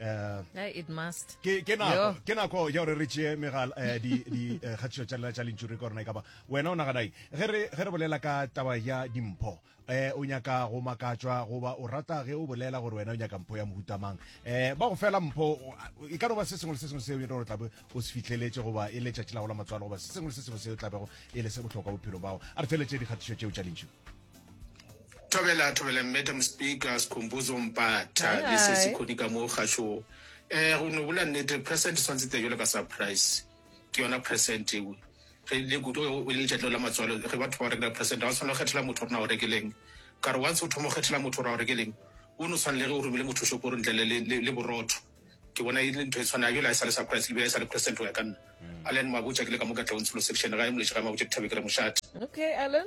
Eh, eh, it must ke ke nako ke nako ya gore re tšee megala eh, di di kgatišo tša lela tša lentšuri ka gorena e kaba wena o naganai ge re ge re bolela ka taba ya dimpho eh o nyaka go makatswa goba o rata ge o bolela gore wena o nyaka mpho ya mohutamang eh ba go fela mpho e ka no ba se sengwe le se sengwe seo e gore tlabe o se fitlheletse goba e le tšatši la go la matswalo goba se sengwe le se sengwe seo tlabego e le se bohlokwa bophelo bao a re feletše dikgatišo tšeo tša lentšu Thobela, thobela, Madam Speaker, Sikhumbuzo Mpata, Hi. le sesi Khodi ka mo kgašo. Eh, go no bula nnete, present swantse te jalo ka surprise. Ke yona present eo. Re le kudu ge o le letšatleo la matswalo, ge batho ba rekela present, ha o tshwanela go kgethela motho gore na o rekeleng. Ka re once o thoma go kgethela motho gore a o rekeleng, o no tshwana le ge o romile motho shopong ntle le, le, le, le borotho. Ke bona e le ntho e tshwanang, jale ha e sa le surprise, le be e sa le present go ya ka nna. Allan Mabotja ke le ka mo Katleong Tsholo Section, gae Moleši gae Mabotja Dithabeng ke re mošate. Okay, Allan.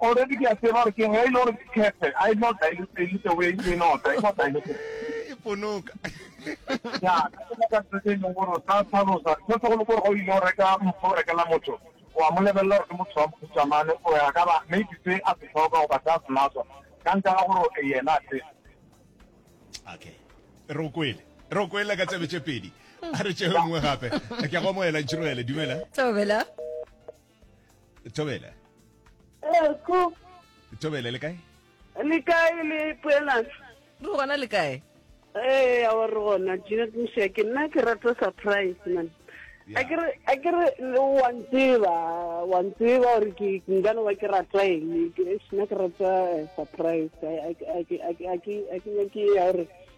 Already ke a tseba gore ke ge e le gore ke khephe, I not dilute the way you know, I not dilute. E ponoka. Ya, ke tsela ka tsela e leng gore sa tlhalosa, se se go le gore go ile go reka motho o rekela motho, wa mo lebelela gore ke motho wa mohuta mane, o ya ka ba maybe se a se tlhoka go ba sa se natswa. Ka nka ga gore e yena a se. Okay. Re o kwele. Re o kwele ka tsebe tše pedi. A re tšeo nngwe gape. Ke go moela ntšhiroele, dumela. Tobela. thobela eko thobela le kae le kae le poelana re gona le kae ee ao re gona janet mosia ke nna ke rata surprise man a ke re wa ntseba wa ntseba gore ke nkane wa ke rata eng nna ke rata eh, surprise a ke nyake ya gore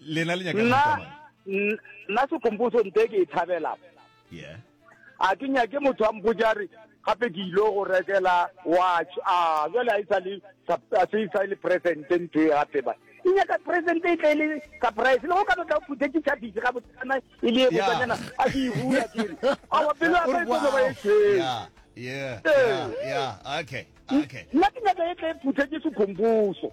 lena le nyaka nna nna sekomposo nte ke e thabela yeah a ke nyake motho a mpotsa re gape ke ile go rekela watch a jale a isa le a se isa le present ntho e gape ba e nyaka present e tle le surprise le go ka tla phuthe ke tsa bisi ga botsana e le go tsana a ke e hula ke re a wa pelo a ba tlo ba e tse yeah yeah yeah okay okay nna ke nyaka e tle phuthe ke se khombuso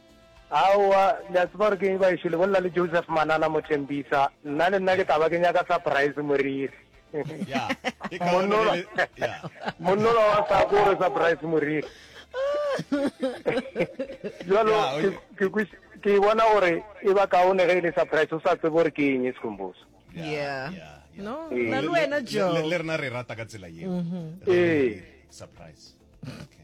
Aowa, le a tseba gore ke eng baešo, le bolela le Joseph Manana Mothembisa, nna le nna ke taba ke nyaka surprise moriri. Monnola wa sa ko re surprise moriri. Jalo ke bona gore e ba kaone ge e le surprise, o sa tsebe gore ke eng e sekhomboso. Yeah. Yeah. No, na le wena Joe. Le rena re rata ka tsela eo. Mm-hmm. Ee. Surprise. Okay.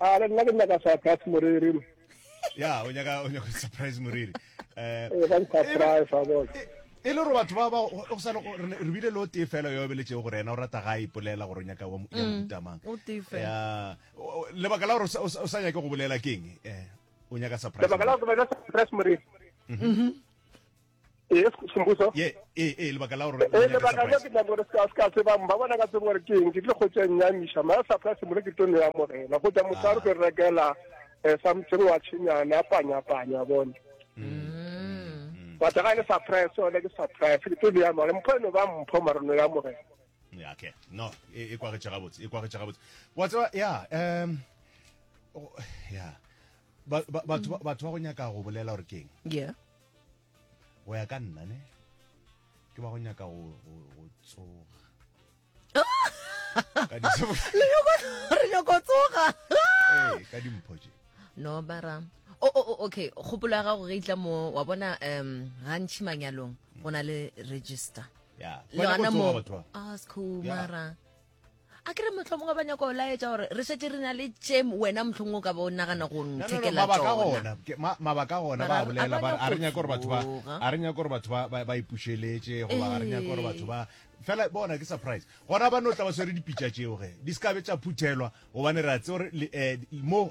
a le nna ke nyaka surprise moriri ya o nyaka o nyaka surprise moriri eh, eh ba surprise a bona e, e le gore batho ba ba o sa re bile lo tee fela yo bele tšego gore ena o rata ga ipolela gore o nyaka wa motamang mm, ya lebaka la gore o sa nyake go bolela keng eh o nyaka surprise lebaka la gore surprise moriri mhm. ee sembuso ye ee ee lebaka la gore ee lebaka la ke tla gore ska ska se ba mba bona ka tsebo gore ke eng ke tle go tsa nya misha ma sa pla se mo ke tlo ya mo rena go tla mo tsaro ke rekela eh sa mtseng wa tshenyana panya panya bona mm. ba tsaka le sa price ona ke sa price ke tlo ya mo re mpho no ba mpho marono ya mo rena ya okay no e, e kwa ga tsega botse e kwa ga tsega botse wa tseba ya um ya batho ba go nyaka go bolela gore keng yeah go ya ka nna ne ke ba go nyaka go tsoga re nyako tsoga ee, ka dimpho je no bara o oh, oh, oh, okay kgopolo ya gago ge itla mo wa bona um gantšhi manyalong go na le register le gona mo ask ah, mara a ke re motlho mongwe ba nyaka go laetša gore re šetse re na le tše wena mohlong o ka bo nagana go nthekela tsonamabaka gona ba bolela ba a re nyaka gore batho ba a re nyaka gore batho ba ipušeletše goba ga re nyaka gore batho ba fela bona ke surprise gona ba no tla ba swere dipitša tšeo ge di se kabe tša phuthelwa gobane re a tse gore eh, mo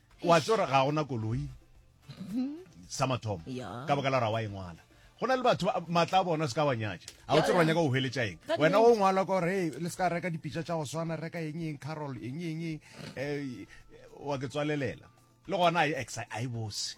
wa tse gore ga gona koloi sa mathomo ka baka la gore wa engwala go na le batho maatla a bona se ka wa nyatša ga o tsere wa nyaka go hweletša eng wena o ngwala ka gore le se ka reka dipitša tša go swana reka eng eng carol eng eng um wa ke tswalelela le gona a e bose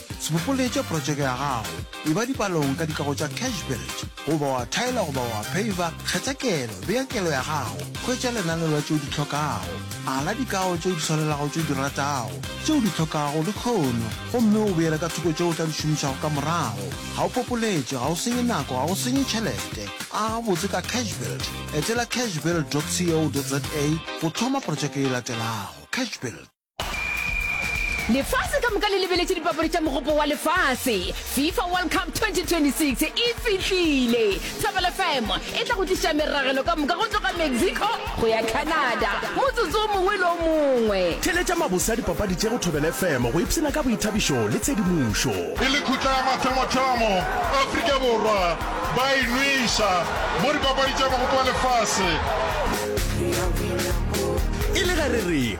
Sebopoletša protšeke ya gago, eba dipalong ka dikago tša Cash Village, goba wa thaela goba wa phaviva, kgetha kelo, bea kelo ya gago, hwetša lenaneo la tšeo di hlokago, ala dikago tšeo di swanelago tšeo di ratago, tšeo di hlokago lehono, gomme o beele ka thoko tšeo o tla di šomišago ka morago. Ga o popoletše, ga o senye nako, ga o senye tšhelete. Aga gabotse ka Cash Build. Etela cashbuild dot co dot za go thoma protšeke e latelago. Cash Build. lefase ka moka le lebeletše dipapadi tša mogopo wa lefase fifa world cup 2026 e fihlile thapelo fm e tla go tliša meragelo ka moka go tloga mexico go ya canada motsotso o mongwe le o mongwe theletša mabose a dipapadi tše go thobele fm go ipshina ka boithabišo le tshedimošo e le khutla ya mathomothamo afrika borwa ba e nweša mo dipapadi tša mogopo wa lefase e le ge re re